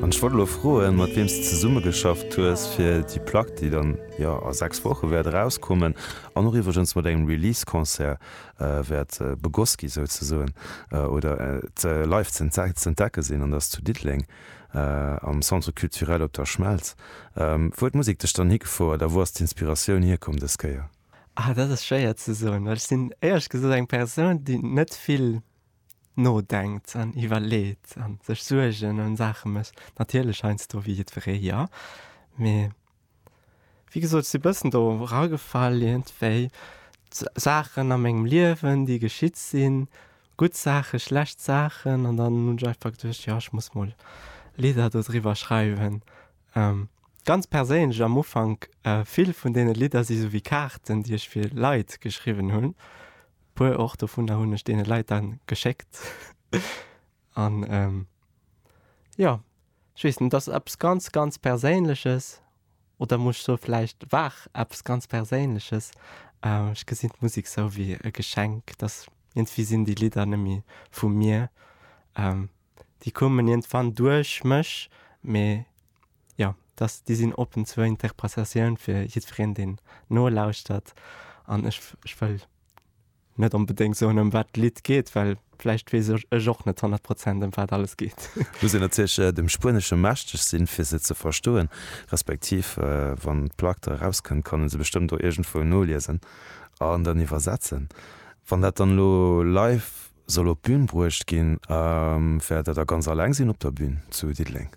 An ech wollt elo froen, mat wiem s de zesummegeschafft hues fir déi Plack, déi dann jo a 6 Woche wäert erauskommen an och iwwregens mat engem Release-Concert wäert begoss gi souzesoen oder et live z'entdecke sinn an dass zu Diddeleng am Centre Culturel op der Schmelz. Wou huet d'Musek dech dann higefouert a wou ass d'Inspiratioun hierkomm dës Kéier? Ah, dat ass schwéier ze soen, well ech sinn éierlech gesot eng Persoun, déi net vill. nodenkt an iwwerleet an sech Suergen ëm Saache mécht, natierlech heiansdo wéi jiddweree, jo, mee wéi gesot, ech si e bëssen do eragefall iergendwéi. Saachen a mengem Liewen, déi geschitt sinn, gutt Saache, schlecht Saachen an dann hunn ech einfach geduecht, jo, ech muss mol Lidder do driwwer schreiwen. Ganz perséinlech am Ufank, vill vun deene Lidder si sou wéi Kaarten, déi ech fir Leit geschriwwen hunn, Puer och dovunner hunn ech deene Leit dann geschéckt. An jo, ech weess net, et ass eppes ganz, ganz Perséinleches. Oder muss ech soe vläicht war eppes ganz Perséinleches. Ech gesinn d'Musek sou wéi e Geschenk, dass iergendwéi sinn déi Lidder nëmme vu mir. Déi kommen iergendwann duerch mech, mee. jo, dass déi sinn oppen zur Interpretatioun fir jiddwereen, deen nolauschtert. An ech, ech wëll net onbedéngt soen, ëm wat d'Lidd geet, well vläicht weess ech, ech och net honnert Prozent, ëm wat alles geet. Muss een natierlech dem Spuenesche mächteg sinn, fir se ze verstoen, respektiv wann d'Plack da erauskënnt, kann ee se bestëmmt do iergendwou noliesen an dann iwwersetzen. Wann dat dann elo live Soll op d'Bün bruecht ginn. Wäert der da ganz alleng sinn op der Bün zu Diddeleng?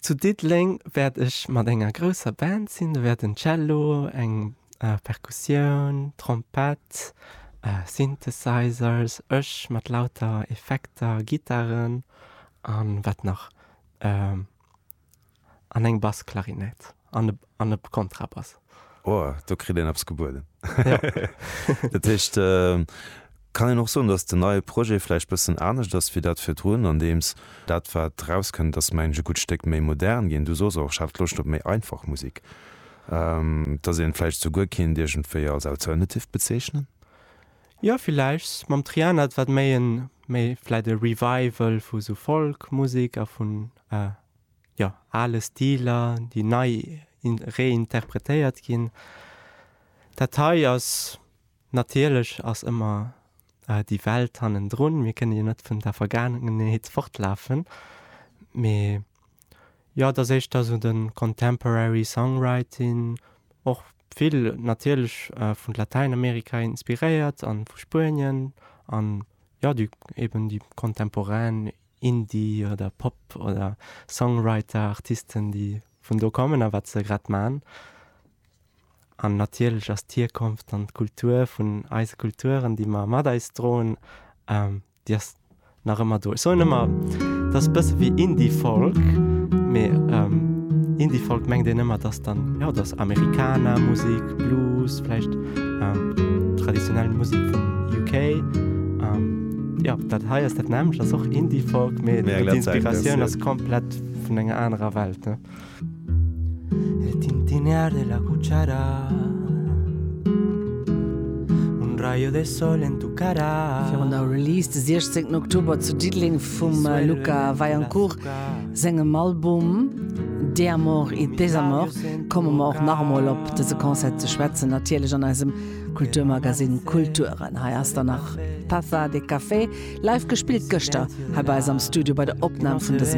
Zu Diddeleng wäert ech mat enger grousser Band sinn. Do wäerten Cello, eng Perkussioun, Trompett, Synthesizers, ech mat lauter Effekter, Gittaren an wat nach? An eng Bassklarinett an e Kontrabass. Oh, do kritt een eppes gebueden. Dat heescht, kann een och soen, datt den neie Projet vläicht bëssen anescht ass wéi dat virdrun, andeems dat wat erauskënnt ass, mengen ech, e gutt Stéck méi modern ginn. Du soos och, ech hat Loscht op méi einfach Musek. Datt een et vläicht esouguer kinnt iergendwéi als alternative bezeechnen? Jo, vläicht. Mam Triana, wat méi en, méi vläicht e Revival vu sou Folk-Musek a vun jo, ale Stiler, déi nei reinterpretéiert ginn. Dat hei ass, natierlech ass ëmmer déi Welt hannendrun, mir kënne jo net vun der Vergaangenheet fortlafen, mee jo, et ass éischter esou de contemporary songwriting, och vill natierlech vu Latäinamerika inspiréiert a vu Spuenien an jo, eben déi contemporain Indie oder Pop oder Songwriter, Artisten, déi vun do kommen a wat se grad man. An natierlech ass d'Hierkonft an d'Kultur vun eise Kulturen, déi mer mat eis droen, déi ass nach ëmmer do. Ech soen ëmmer, dat ass e bësse wéi Indie-Folk, mee Indie-Folk mengt een ëmmer, dass dann, jo, et ass Amerikaner-Musek, Blues, vläicht traditionell Musek vum UK. Jo, dat hei ass dat nämmlecht, ass och Indiefolk, mee d'Inspiratioun ass komplett vun enger anerer Welt, ne? El tintinear de la cuchara Un rayo de sol en tu cara Virun der Release de 16 Oktober zu Diddeleng vum Luca Vaillancourt sengem Album De Amor y Desamor komme mer och nach emol op dëse Concert ze schwätzen, natierlech an eisem Kulturmagazine Kulturen. Hei ass dann nach Taza de Café, live gespillt gëschter hei bei eis am Studio bei der Opnam vun dësem.